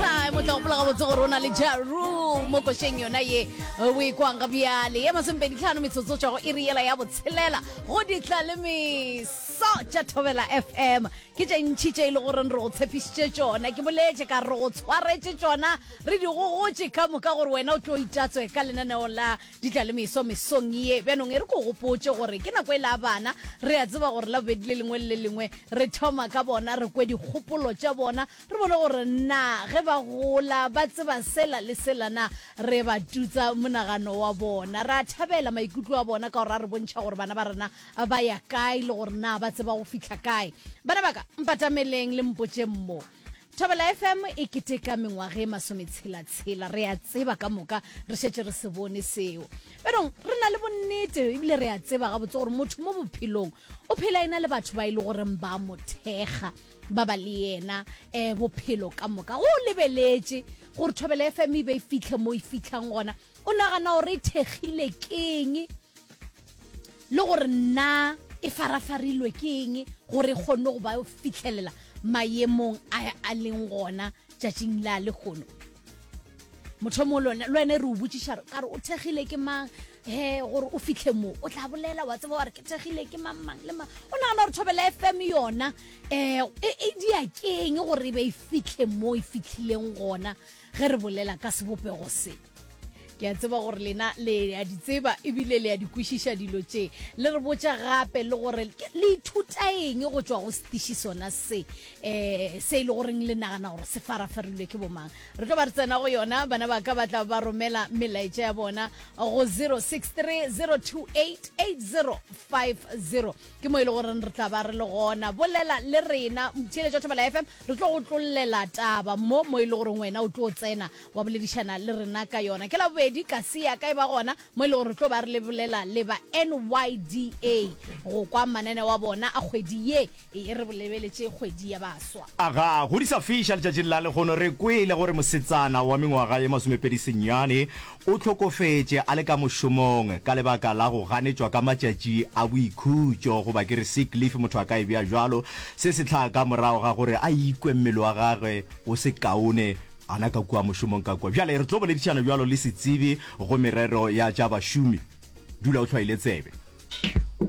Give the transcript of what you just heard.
time o tla gopola gabotse gore o na le jaru mo košeng yona ye o e kwang ga bjale ye masomepedi tlhano metsotso tšwa go e re yela ya botshelela go ditla le meso tša thobela fm ke tše ntšhi tše e le goreng re go tshepišitše tšona ke boletše ka re go tshwaretše tšona re di gogotše ka moka gore wena o tlo itatswe ka lenaneo la ditla le meso mesong ye bjanong e re ko gopotše gore ke nako e la bana re a tseba gore la bobedi le lengwe le le lengwe re thoma ka bona re kwe dikgopolo tša bona Re bone gore na ge ba gola ba tseba sela le sela na re ba tutsa monagano wa bona. Re a thabela maikutlo a bona ka gore a re bontšha gore bana ba rena ba ya kae le gore na ba tseba go fihla kae. Bana ba ka, mpatameleng le mpotšeng mo. Thobela FM e keteka mengwaga e masometshela-tshela. Re a tseba ka moka re šetše re se bone seo. Bjanong re na le bonnete ebile re a tseba gabotse gore motho mo bophelong o phela e na le batho ba e le goreng ba mo thekga. ba ba le yena um bophelo ka moka go lebeletše gore thobela fm e be e fitlhe mo e fitlhang gona o nagana gore e thekgile keng le gore nna e farafarilwe ke eng gore e kgonne go ba fitlhelela mayemong a a leng gona tšatšing la lekgono mothomo le wena re o botsiša ka re o thegile ke mang he gore o fitlhe mo o tla bolela wa tseba gore ke thegile ke mang mang le mang o nagana gore thobela fm yona um e dia keng gore e be e fitlhe mo e fitlhileng gona ge re bolela ka sebopego se Ke a tseba gore lena le a di tseba ebile le a di kwešiša dilo tše. Le re botša gape le gore le ithuta eng go tšwa go setiši sona se um se e le goreng le nagana gore se farafarilwe ke bomang. Re tlo ba re tsena go yona, bana ba ka ba tla ba romela melaetša ya bona go 063 028 8050 ke mo e le goreng re tla ba re le gona. Bolela le rena, Theeletšo Thobela FM, re tlo go tlollela taba mo mo e le goreng wena o tlo tsena wa boledišana le rena ka yona. Ke Labobedi ka se ya ka e ba gona mo e le gore re tlo ba re lebolela le ba NYDA go kwa mananeo a bona a kgwedi ye e re bolebeletše kgwedi ya baswa. A ga go di sa fiša letšatšing la lehono, re kwele gore mosetsana wa mengwaga ye masomepedi senyane o hlokofetše a le ka mošomong ka lebaka la go ganetšwa ka matšatši a boikhutšo goba ke re sick leave motho a ka e bea bjalo. Se se tlaa ka morago ga gore a ikwe mmele wa gagwe o se kaone A na ka kua mošomong ka kua? Bjale re tlo boledišana bjalo le setsebi go merero ya tša bašomi. Dula o hlwaile tsebe.